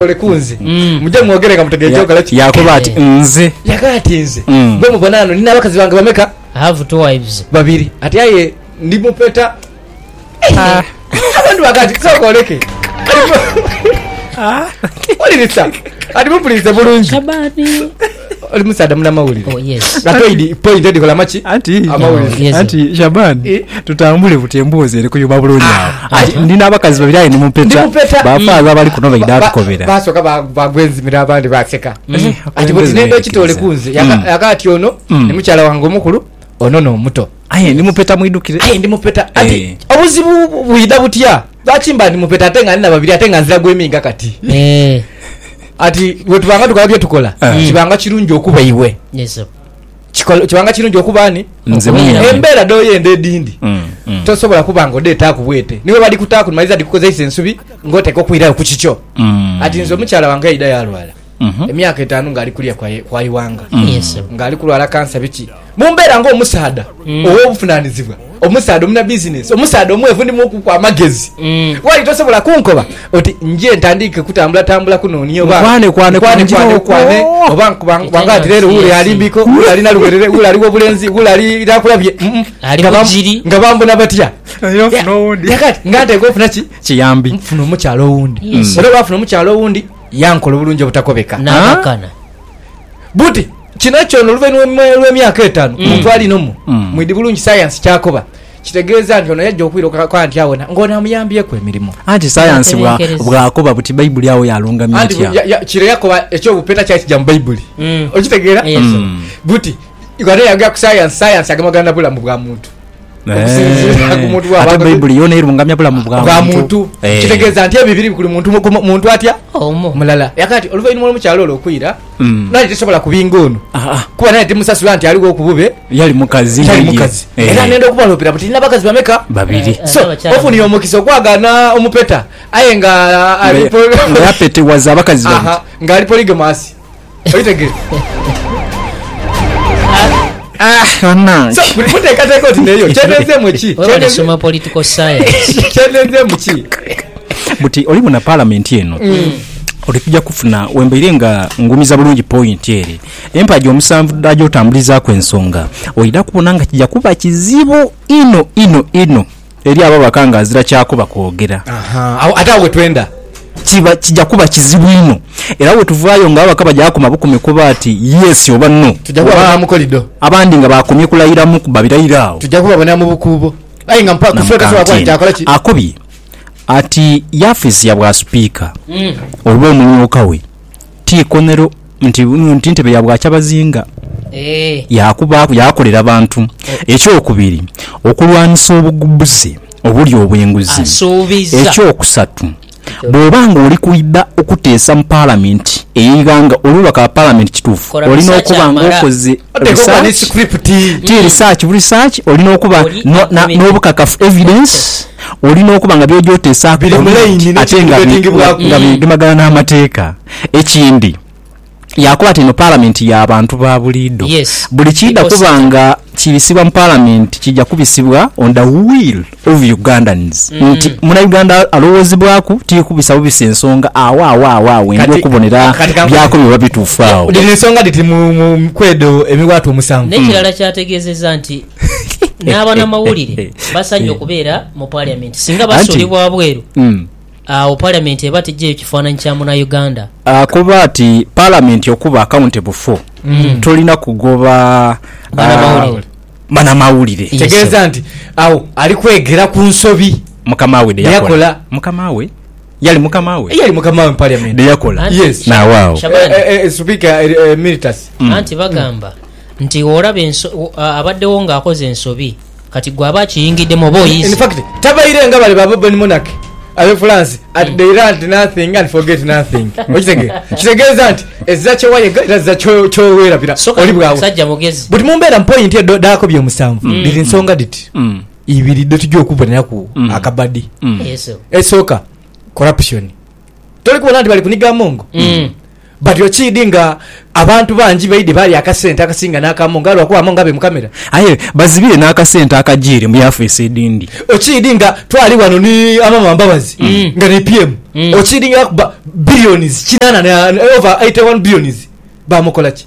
Mwekolekole ku nze, muje mwogere nga mutegeire kyokola ki. Yaakoba ati, Nze. Yaakoba ati, Nze. Gwe mubona ghano, ni n'abakazi bange bameka? I have two wives. Babiri. Ati, Aye ndi mupeta. Abantu baakoba ati, Sooka oleke. Wulirisa. Kati mupulirize bulungi. Oli musaadha munamawulire. Oh, yes. Nga toidi point edikola maki? Anti, Amawulire. Yes. anti Shaban Eh. tutambule buti emboozi eri kuyuma bulungi awo Ah, Anti ndi n'abakazi babiri aye ni Ndi mupeta mupeta. bafaaza abali kuno baidha Ba- ba- tukobera Basooka ba- bagwa enzimira abandi baseka. Mm. Ati bwe Akulembeze tinenda ekitole beerekeza. kunze. Yaka- Yaka ati ono ni mukyala wange omukulu, ono n'omuto. Aye ndi mupeta mwidhukire. Aye ndi mupeta. Ati eh. obuzibu bwidha butya? Lwaki mba ndi mupeta ate nga ndi na babiri ate nga nzira gwe minga kati? Eh. Ati wetubanga tukola bye tukola eh. kibanga kirungi okuba iwe. Yes sir. Kikola kibanga kirungi okuba ani? Nze mwenye. Embera do yende edindi. Mm, mm. Tosobola kuba ngo de taku bwete. Niwe bali kutaku maliza dikukoza isensubi ngote ko kuira ku kicho. Mm. Ati nzo muchala wange ida yalwala. emyaka etaanu ng'ali kulya kwa iwanga, mm. ng'ali kulwala kansa biki, mu mbeera ng'omusaadha mm. ow'obuvunaanizibwa, omusaadha omuna bizinensi, omusaadha omwevu ndi mukuku amagezi, mm. wali tosobola kunkoba oti nje ntandiike kutambulatambula kunooni oba kwanekwanekwane oba nkubanga ati leero wule alimbiko wule alina luberere wule ali w'obulenzi wule ali nakulabye nga bambona batya nga nteeka ofuna ki kiyambi nfuna omukyalo owundi era olwafuna omukyalo owundi yankola obulungi obutakobeka. N'akakana. Buti, kino kyona oluvainhuma lw'emyaka etaanu, omuntu ali nomu mwidhi bulungi sayansi ky'akoba, kitegeeza nti ono yaja okwira okukaka nti awona ng'ono amuyambyeku emirimo. Anti sayansi bwa, bw'akoba buti Baibuli agho yalungamya Anti etya? ya, ya, kiro yakoba eky'obupeta kyali kija mu Baibuli. Okitegeera? Buti, ghano yagya ku sayansi, sayansi agemagana na bulamu bwa muntu. okusinziira ku muntu ate baibuli yona erungamya bulamu bwa muntu eh. kitegeeza nti ebyo biri buli muntu muntu atya omu mulala yakati oluvainuma olwomukyalo olwo okwira mm. nali tesobola kubinga ono ah, ah. kuba nali temusasula nti aliwo okubube yali mukazi yali mukazi eh. era nenda okubalopera buti nina bakazi bameka babiri eh, so ofuniye omukisa okwagana omupeta aye nga alipoyapetewaza abakazi nga ali poligamasi Buti olibona palamenti eno oti tuja kufuna wembaire nga ngumiza bulungi pointi ere empagi omusanvu daja otambulizaku ensonga oida kubona nga kija kuba kizibu inho inho inho Eri abo abaka nga azira kyakuba kwogera. Ahaa, agho, ate agho we twenda. Kiba, kija kuba kizibu inho. Era bwe tuvaayo nga ababaka baja kuba koma bukome kuba ati Yes oba No, Tuja oba kubabonera mu kolido. abandi nga baakomye kulayiramu kuba birayiro agho. Tuja kubabonera mu bukuubo. Aye nga mpa, Kufuuka Namugamba tasobola kuba nti nti akola ki? akobye ati yaafeesi ya bwa Sipiika oba omumyuka we. Ti ikonhero nti buno nti ntebe ya bwakyabazinga. Eeh. Yaakubaaku, yaakolera bantu. Ekyokubiri, okulwanisa obugbuze obuli obw'enguzi. Asuubizza. Ekyokusatu, bw'oba ng'oli kwidha okuteesa mu Palamenti ey'eighanga obe omubaka wa Palamenti kituufu, Kola olina research okuba amala. ng'okoze Oteekwa okuba ni research, script. ti research bu research, olina okuba Oli no- na- akumidde. n'obukakafu, evidence. Olina okuba nga by'oja oteesaaku komeenti ate nga bigemagana n'amateeka. Ekindi, yaakoba ati eno Palamenti ya bantu ba buliidho. Buli kiidha kuba nga kibisibwa mu Palamenti kiija kubisibwa on the will of Ugandans nti Munauganda alowoozebwaku ti kubisabubisa ensonga agho agho agho agho endi okubonera by'akobye oba bituufu agho. Dhino ensonga dhiti mu ku edho emiwaatwa omusanvu. N'ekirala kyategeezezza nti n'abanamawulire basanye okubeera mu Parliament. Singa basuulibwa wabweru, hmm. awo Parliament eba tejjeeyo kifaananyi kya Munauganda. Ah, kuba ti Parliament okuba accountable for, hmm. tolina kugoba ah, banamawulire. Tegeeza nti awo ali kwegera ku nsobi mukama we deyakola mukama we yali mukama we yali mukama we parliament deyakola yes na wao eh, eh, eh, speaker emeritus mm. anti bagamba nti bw'olaba enso, abaddewo nga akoze ensobi, kati gwe aba akiyingiddemu oba oyiise. In fact, tabaire nga bale ba Bourbon Monarchy Abefulansi at they learned nothing and forget nothing. Okitegera? Kitegeeza nti ezira kye wayega era zira kye weerabira So kati oli bw'awo. musajja mugezi. But mu mbeera mu point eyo dho dhaako by'omusanvu dhiri nsonga dhiti ibiri dhe tugya okuboneraku akabadi. Yes. Esooka, corruption. Toli kubona nti bali kuniga amongo? Batyo kiidhi nga abantu bangi baidhi baalya akasente akasinga n'aka Monga lwa kuba Monga abeemukamira. Aye bazibire n'akasente akajiire mu yaafiisi edhindi. Okiidhi nga twali ghano ni Amama Mbabazi nga ni PM, okiidhi nga yakuba billions kinaana na over eighty one billions, baamukola ki?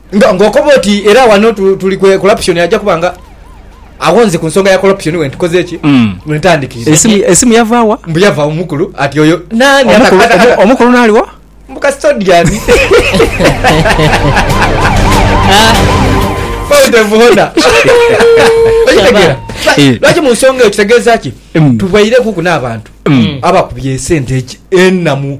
Nga ng'okoba oti era wano tuli ku corruption aja kuba nga awonze ku nsonga ya corruption we ntukoze ki mm. we ntandikiriza esimu, esimu yava wa mbu yava omukulu ati oyo nani omukulu naliwa mbu custodian odevuhona okitegera eh. lwaki mu nsonga eyo kitegeeza ki mm. tubwaireku ku n'abantu mm. abakubye esente enamu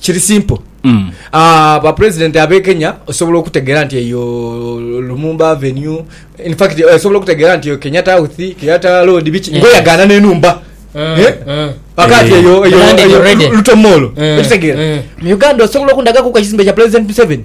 Kiri simple mm. Uh, ba president abe Kenya osobola okutegera nti eyo Lumumba Avenue in fact eh, osobola okutegera nti eyo Kenyatta House Kenyatta Road biki yeah. ngoyagana nenumba mm. eh? mm. akati eh. eyo eyo eyo Lutomolo mm. ekitegera mm. mu Uganda osobola okundaga ku kizimbe kya president Museveni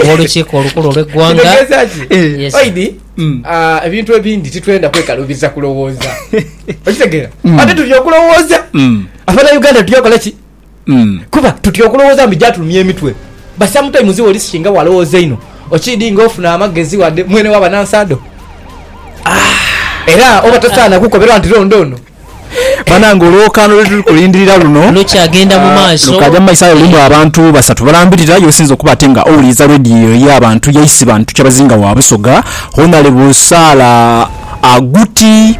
ow'Olukiiko Olukulu olw'eggwanga. Kitegeeza ki? Eh. Yes. Oidi, Mm. ah, ebintu ebindi titwenda kwekaluubiza kulowooza. Okitegeera? Mm. Ate tutya okulowooza. Mm. Abanauganda tutya okola ki? Mm. Kuba tutya okulowooza mbu gyatulumya emitwe. But sometimes oli singa walowooza einho, okiidi nga ofuna amagezi wadde mwene waba na nsado. Ah. Era oba tosaana kukoberwa nti londo ono. Banange olwokaano lwetuli kulindirira luno lukyagenda mu maaso. Lukaja mu maiso aye lulimu abantu basatu balambirira yosinza okuba ate nga owuliriza radio eyo eya bantu yaisi bantu kyabazinga wa busoga Honalebo Saala Aguti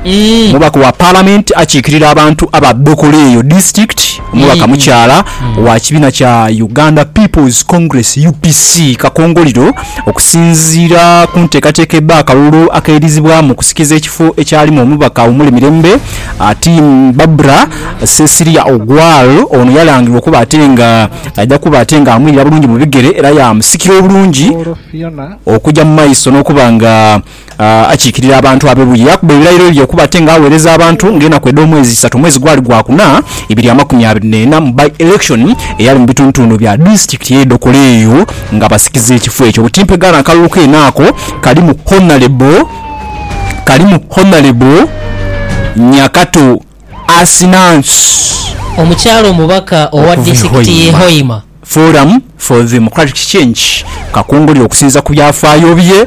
mubaka wa parliament akikirira abantu aba Dokolo eyo district. Omubaka mukyala wa kibiina kya Uganda People's Congress, UPC, Kakongoliro okusinziira ku nteekateeka ebba akalulu akeidhizibwamu okusikiza ekifo ekyalimu omubaka Wumule Mirembe ati Barbra Cecilia Ogwal ono yalangirwa okuba ate nga aidha kuba ate nga amwirira bulungi mu bigere era yaamusikira obulungi okugya mu maiso n'okuba nga akiikirira abantu abe buye. Yaakuba ebirayiro bye okuba ate nga agheereza abantu ng'enaku edh'omwezi isatu. Omwezi gwali gwa kuna, ibiri amakumi abiri n'ena, mu by-election eyali mu bitundutundu bya disitulikiti y'e Dokolo eyo nga basikiza ekifo ekyo. Butimpe gano akalulu keene ako kalimu Honalebo kalimu Honalebo Nyakato Asinansi. Omukyala omubaka owa disitulikiti y'e Hoima. Forum for Democratic Change kakongolire okusinziira ku byafaayo bye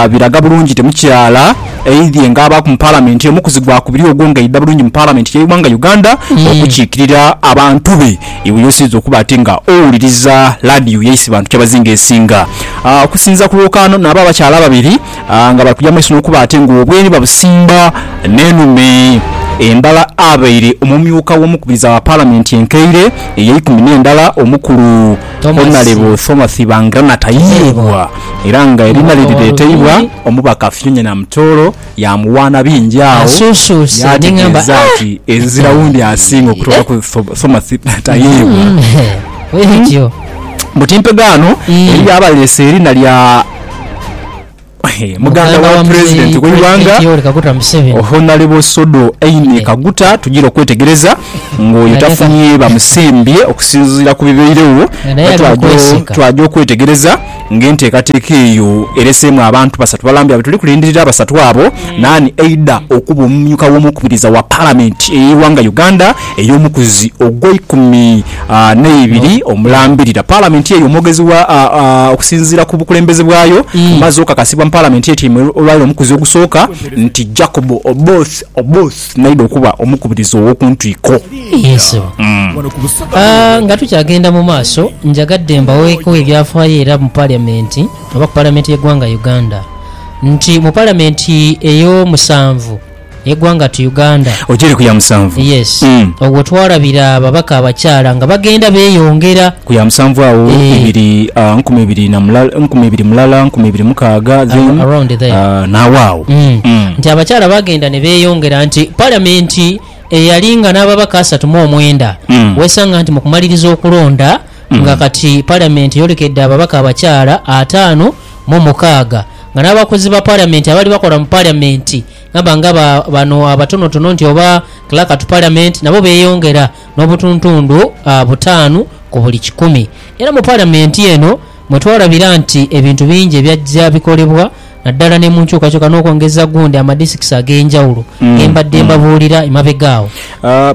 biraga bulungi temukyala aidhie nga abaaku mu Palamenti omukuzi gwakubiri ogwo nga aidha bulungi mu Palamenti y'eighanga Uganda okukiikirira abantu be iwe y'osinze okuba ate nga owuliriza laadiyo yaise bantu kyabazinga esinga. Okusinziira ku lwokaano nabo abakyala ababiri nga bali kugya mu maiso n'okuba ate ng'obwemi babusimba n'enume. Embala abaire omumyuka w'omukubiriza wa Palamenti enkaire ey'eikumi n'endala omukulu Honalebo Thomath Bangirana tayiibwa era nga eriina lye lireeteibwa omubaka Philomena Mtooro yaamuwaana bingi agho yaategeeza nti ezira wundi asinga okutoolaku Thomath tayiibwa mbu timpegaano eri abaleese eriina lya muganda wa pulezidenti w'eighanga Honarebo Sodo Aine Kaguta tugira okwetegereza ng'oyo tafunye bamusembye okusinziira ku bibairegho nga twaja okwetegereza ng'enteekateeka eyo ereseemu abantu basatu balambye nga bwetuli kulindirira abasatu abo naani aidha okuba omumyuka w'omukubiriza wa palamenti ey'eighanga Uganda ey'omukuzi ogweikumi neibiri omulambirira palamenti eyo omwogezi wa okusinziira ku bukulembeze bwayo amaze okakasibwa mu palamenti etyaime olwaleero omukuzi ogusooka nti Jacob Oboth Oboth naidha okuba omukubiriza owokuntwiko. Yee sebo nga tukyagenda mu maaso njagadde mbaweeko ebyafaayo era mu palamenti oba ku palamenti y'eggwanga Uganda nti mu palamenti ey'omusanvu, egwanga tu Uganda. Ojeere ku ya musanvu. Yes. Mm. Ogwo twalabira ababaka abakyala nga bagenda beyongera. Ku ya musanvu agho Eeh. ibiri ah, nkumi ibiri na mula, nkumi ibiri mulala, nkumi ibiri mukaaga then Ar- around there. ah, naagho agho. Mm. Mm. Nti abakyala bagenda ne beyongera nti parliament eyali nga n'ababaka asatu mu omwenda Mm. wesanga nti mu kumaliriza okulonda nga kati parliament eyolekedde ababaka abakyala ataano mu mukaaga nga n'abakozi ba parliament abaali bakola mu parliament Ghaba nga bano abatonotono nti oba Clerk to Parliament nabo beyongera n'obutuntundu butaanu ku buli kikumi. Era mu Parliament eno mwe twalabira nti ebintu bingi ebyajja bikolebwa naddala ne mu nkyukakyuka n'okwongeza gundi amadisikisi ag'enjawulo ge mbadde mbabuulira emabega agho.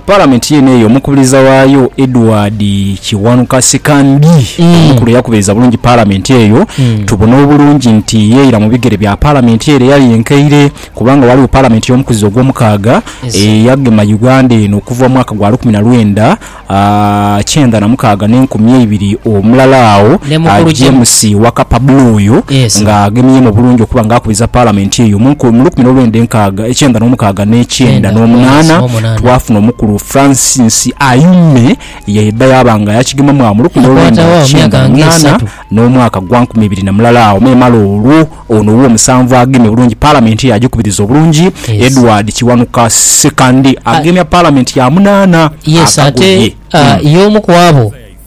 Palamenti yeene eyo omukubiriza waayo Edward Kiwanuka Sikandi omukulu yakubiriza bulungi Palamenti eyo tubone obulungi nti yeira mu bigere bya Palamenti ere eyali enkaire kubanga ghaligho Palamenti y'omukuzizo ogw'omukaaga eyagema Uganda eno okuva mu mwaka gwa lukumi na lwenda kyenda na mukaaga n'enkumi eibiri omulala agho James Wakapa Bula oyo ng'agemyemu bulungi okuba ng'akubiriza Palamenti eyo mu lukumi n'olwenda enkaaga. ekyenda n'omukaaga n'ekyenda n'omunaana twafuna omukulu Francis Ayume yaidha yaaba nga yakigemamu amuluku n'olwenda lwa kyenda mu munaana n'omwaka gwa nkumi ibiri na mulala agho memale olwo ono ow'omusanvu agemye bulungi Palamenti yaagikubiriza obulungi Edward Kiwanuka Ssekandi agemya Palamenti ya munaana akagoye.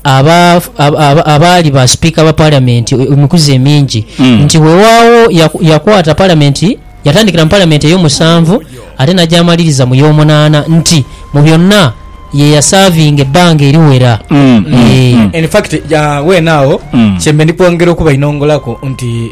aba, aba, abaali ba sipiika ba Palamenti emikuzi emingi, nti weewaawo ya, yakwata Palamenti, yatandikira mu Palamenti ey'omusanvu ate n'agyamaliriza mu y'omunaana, nti mu byonna ye yasaavinga ebbanga eriwera. Eeh. In fact, weene agho kye mbe ndi kwongera okubainongolaku nti.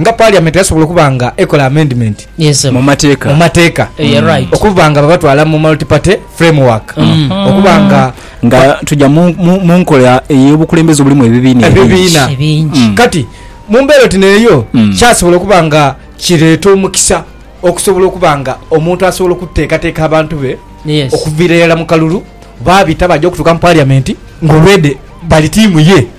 nga Parliament yasobola okuba nga ekola amendment mu mateeka okuba nga babatwala mu multi party framework okuba nga nga tuja mu nkola eyobukulembeze obulimu ebibiina ebingi kati mumbeera oti neeyo kyasobola okuba nga kireeta omukisa okusobola okuba nga omuntu asobola okuteekateeka abantu be okuviira irala mu kalulu babita baja okutuuka mu Parliament nga already bali tiimu ye.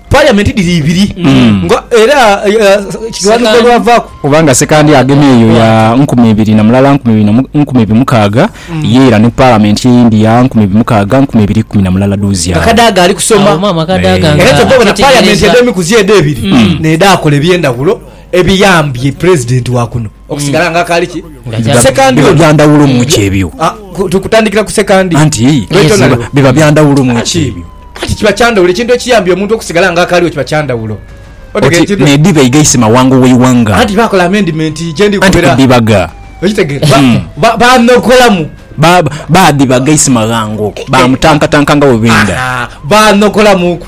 Parliament dhiri ibiri mm. nga era kiwandiiko eh, lwavaaku kubanga sekandi agema eyo ya nkumi ibiri na mulala nkumi ibiri nkumi ibiri mukaaga mm. ye era ne parliament eyindi ya nkumi ibiri mukaaga nkumi ibiri kumi na mulala duuzya akadaaga ali kusoma era kyova bona parliament edho emikuzi edho ebiri mm. nedaakola ebyendawulo Ebiyambye pulezidenti wa kuno okusigala nga akaali ki sekandi we. Biba bya ndhawulo mu ki ebyo? Tukutandikira ku sekandi. Anti biba bya ndhawulo mu ki ebyo? Kati kiba kya ndhawulo ekintu ekiyambye omuntu okusigala nga akaali we kiba kya ndhawulo. Oti n'edhiba eigaise mawanga ow'eighanga. Anti baakola amendimenti gye ndi kubera. Anti kudhibaga. Okitegeera? Baanokolamu. Baadhibaga eisimaghango, baamutankatanka nga bwe benda. Baanokolamuuku.